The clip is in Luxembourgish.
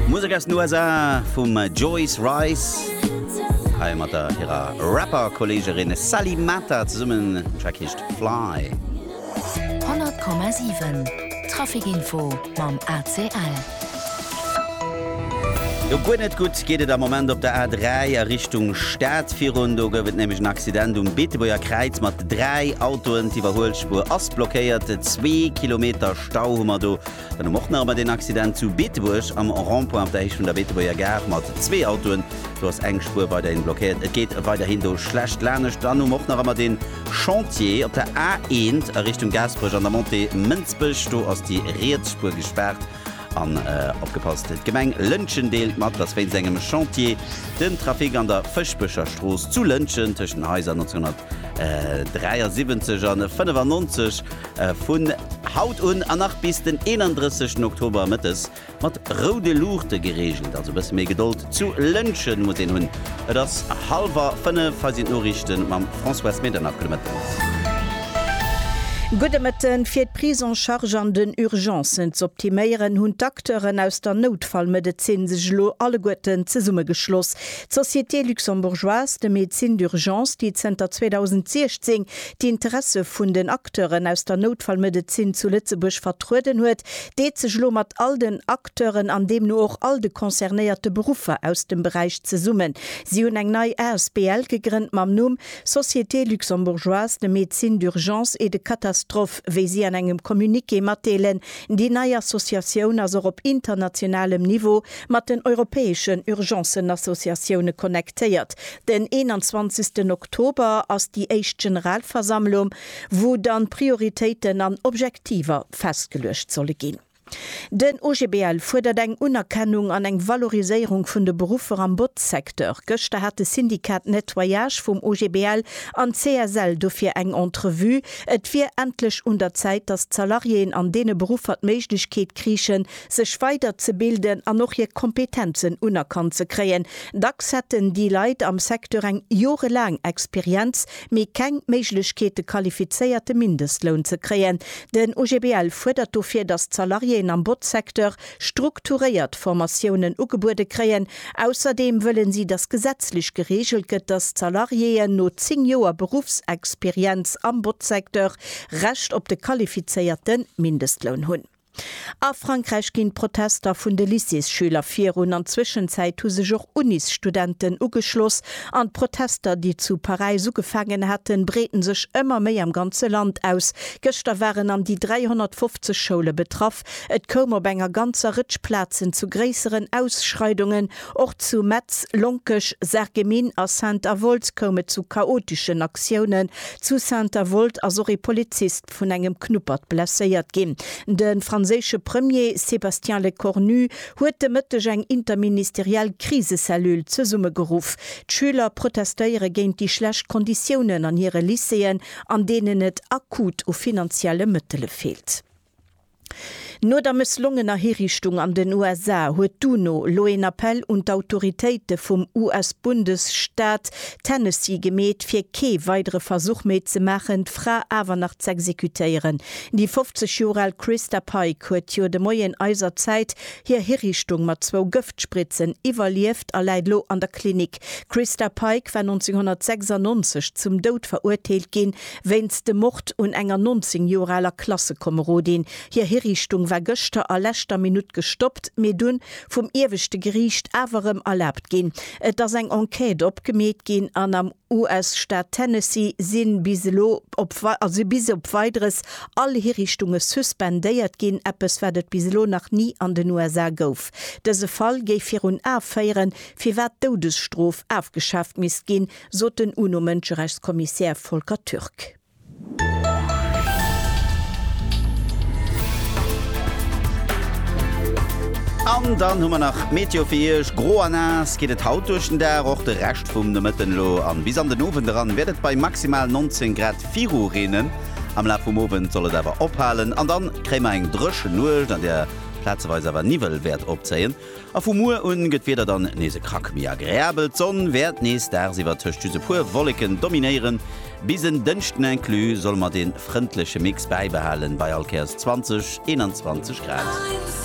Musek aus den USA vum Joyce Wrice, hei mat der hirer Rapper-Kolleegerin Sally Mata zesummen. Den Track heescht Fly. 100,7 Traficinfo mam ACL. Sou guer net gutt geet et am Moment op der A3 a Richtung Stad. Virun do gouf et nämlech en Accident um Beetebuerger Kräiz mat dräi Autoen. D'Iwwerhuelspuer ass blockéiert. Zwee Kilometer Stau hu mer do. Dann hu mer och nach emmer deen Accident zu Beetebuerg am Rond-point op der Héicht vun der Beetebuerger Gare mat zwee Autoen. Do ass eng Spuer weiderhin blockéiert. Et geet weiderhin do schlecht lanescht. Dann hu mer och nach emmer dee Chantier op der A1 a Richtung Gaasperech an der Montée Mënsbech. Do ass déi riets Spuer gespaart. An opgepasst, d'Gemeng Lëntgen deelt mat, dass wéinst engem Chantier den Trafic an der Fëschbecher Strooss zu Lëntgen tëschent den Haiser 1973 an 95, Vun haut un an nach bis den 31 Oktober mëttes mat roude Luuchte gereegelt, also bësse méi Gedold zu Lëntgen muss een hunn. Et ass hallwer 5, hei sinn d'Noriichte mam Françoise Medernach. Gudde Mëtten. Gudde Mëtten. Fir d'Prise en charge an den Urgencen z'optiméieren, hunn d'Acteuren aus der Noutfallmedezin sech elo alleguerten zesummegeschloss. D'Société luxembourgeoise de médecine d'urgence, déi zënter 2016 déi Interesse vun den Acteuren aus der Noutfallmedezin zu Lëtzebuerg vertrueden huet, deet sech elo mat all den Acteuren an deemno och all de concernéierte Beruffer aus dem Beräich zesummen. Si hunn eng nei asbl gegrënnt mam Numm Société luxembourgeoise de médecine d'urgence et de catastrophe, wéi si an engem Communiqué matdeelen. Déi nei Associatioun ass och op internationalem Niveau Mat den europäeschen Urgencenassociatioune connectéiert. Den 21 Oktober ass déi éischt Generalversammlung, wou dann Prioritéiten an Objektiver festgeluecht solle ginn. Den OGBL fuerdert eng Unerkennung an eng Valoriséierung vun de Beruffer am Botzsecteur. Gëschter hat de Syndicat Nettoyage vum OGBL an d'CSL dofir eng Entrevue. Et wier endlech un der Zäit, datt d'Salariéen an deene Beruffer d'Méiglechkeet kriichen, sech weider ze bilden an och hir Kompetenzen unerkannt ze kréien. Dacks hätten déi Leit am Secteur eng jorelaang Experienz, mee keng Méiglechkeet de qualifizéierte Mindestloun ze kréien. Den OGBL fuerdert dofir, datt d'Salariéen am Botzsecteur strukturéiert Formatiounen ugebuede kréien. Ausserdeem wëllen si, datt gesetzlech gereegelt gëtt, datt d'Salariéen no 10 Joer Beruffsexperienz am Botzsecteur Recht op de qualifizéierte Mindestloun hunn. A Frankräich ginn d'Protester vun de Lycéesschüler virun an d'Zwischenzäit hu sech och Unisstudenten ugeschloss an d'Protester, déi zu Paräis ugefaangen haten, breeten sech ëmmer méi am ganze Land aus. Gëschter waren an déi 350 Schoule betraff. Et koum op enger ganzer Rëtsch Plazen zu gréisseren Ausschreidungen. Och zu Metz, Lonkech, Sarreguemines a Saint-Avold koum et zu chaoteschen Aktiounen. Zu Saint-Avold ass och ee Polizist. Schutt vun engem Knuppert blesséiert ginn. De franséische Premier Sébastien Lecornu huet de Mëtteg eng interministeriell Krisecellule zesummegeruff. D'Schüler protestéiere géint déi schlecht Konditiounen an hire Lycéeën, an deenen et akut u finanzielle Mëttele feelt. No der mësslongener Hiriichtung an den USA huet d'UNO elo een Appell un d'Autoritéite vum US-Bundesstaat Tennessee gemeet, fir kee weidere Versuch méi ze maachen, d'Fra awer nach z'exekutéieren. Déi 50 Joer al Christa Pike huet jo de Moien eiser Zäit hir Hiriichtung mat zwou Gëftspritzen iwwerlieft a läit elo an der Klinik. D'Christa Pike war 1996 zum Doud verurteelt ginn, Wéinst dem Mord un enger 19 Joer aler Klassekomerodin. Hir Hiriichtung war gëschter a leschter Minutt gestoppt, mee dunn vum ieweschte Geriicht awer erëm erlaabt ginn. Et ass eng Enquête opgemeet ginn an am US-Staat Tennessee sinn bis elo op also bis op Weideres all Hiriichtunge suspendéiert ginn, eppes wat et bis elo nach ni an den USA gouf. Dëse Fall géif virun A féieren, firwat d'Doudesstrof afgeschaaft misst ginn, sot den UNO-Mënscherechtskommissär Volker Türk. An dann hu mer nach d'Meteo fir Iech, Gro a naass geet et haut duerch den Dag, och de Rescht vum Nomëtten elo an bis an den Owend eran wäert et bei maximal 19 Grad viru reenen. Am Laf vum Owend soll et awer ophalen an dann kréie mer eng dréchen Nuecht, an där plazeweis awer Niwwel wäert opzéien. A vu muer un gëtt d'Wieder dann nees e Krack méi agreabel. D'Sonn wäert nees dagsiwwer tëscht just e puer Wolleken dominéieren. Bis en Dënschden inclus solle mer dee frëndleche Mix bäibehalen bei allkéiers 20, 21 Grad.